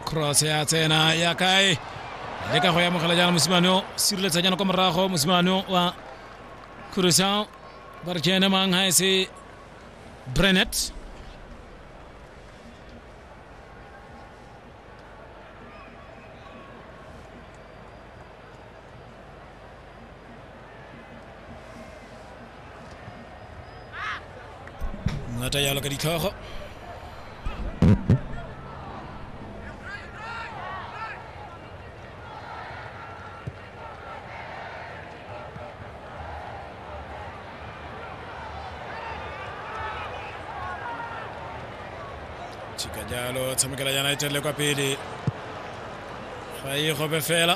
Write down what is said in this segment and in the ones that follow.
cross ya tsena ya kae le ka go ya mogela jaana mosimane o sireletsa jaana kwa morago mosimane o wa crucial ba re kene mang ga e se brenet ngata yalo ka ditlhogo chika jalo tshamekela united le kwa pele ga e gobe fela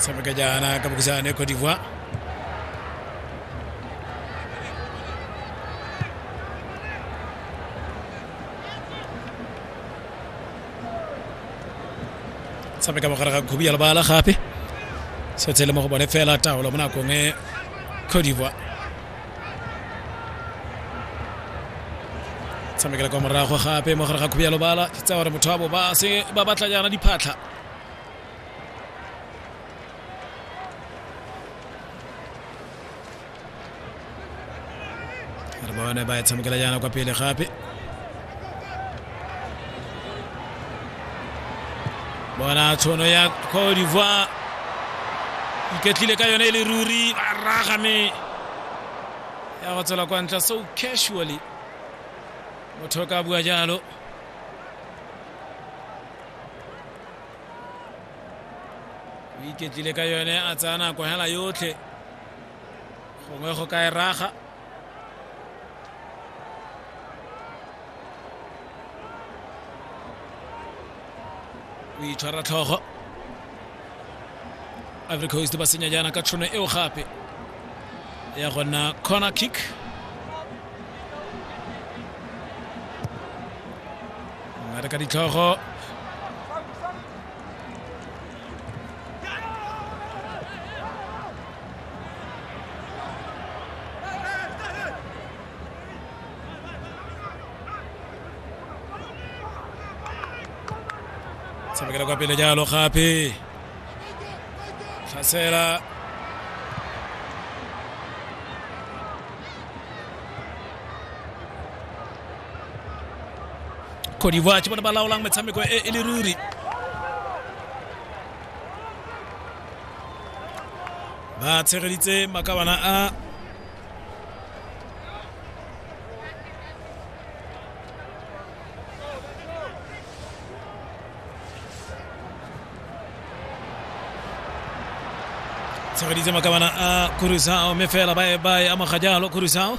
sama ka jaana ka bëgg saa ne Côte d'Ivoire sabe kama kara kubi yala bala khape so tele mo bone fela tawlo mona ko nge Côte d'Ivoire tshamekela kwa morago gape mo gare ga khubialo bala ke tsaya gore motho wa bo ba se ba batla jaana diphatlha re bone ba e tshamekela jaana kwa pele gape bona tshono ya cote d'ivoire iketlile ka yone e le ruri ba raga me ya go tswela kwa ntla so casually motho o ka bua jalo o iketlile ka yone a tsaya nako hela yotlhe gongwe go ka e raga o itshwara tlhogo ivory coast ba senya jaana ka tšhono eo gape ya gona corner kick ngare ka ditlhogo tshamekela kwa pele jalo gape tlhasela cote d'ivoire ke bone ba laolang metshameko e e le ruri ba tshegeditse makabana a tshegeditse makabana a kurusao mme fela ba e ba e amoga jalo kurusao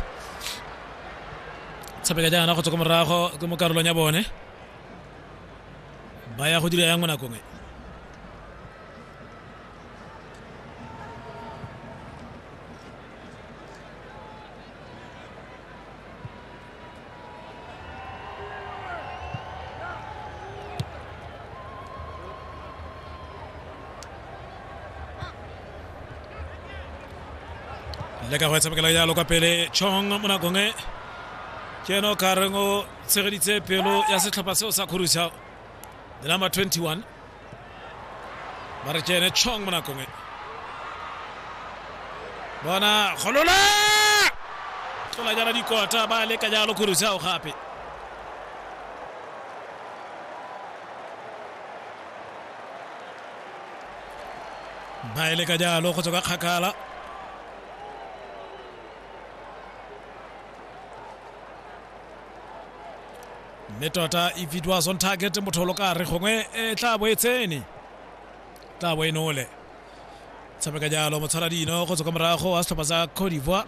tshabeka jaana go tswa ko morago ke mo karolong ya bone ba ya go dira yang mo nakong e le ka go tshamekela jalo kwa pele chong mo nakong e ke ene o ka reng o tshegeditse pelo ya setlhopha seo sa kgorusa the number 21 ba re tsene chong mo nakong e bona golola tlola jana dikota ba leka jalo khurusa o gape ba e leka jalo go tswa ka kgakala mme tota e bidwa zone target motholo ka re gongwe e tla bo e tsene tla bo e nole tshameka jalo motshwara dino go tswa kwa morago wa setlhopha sa cote d'ivoire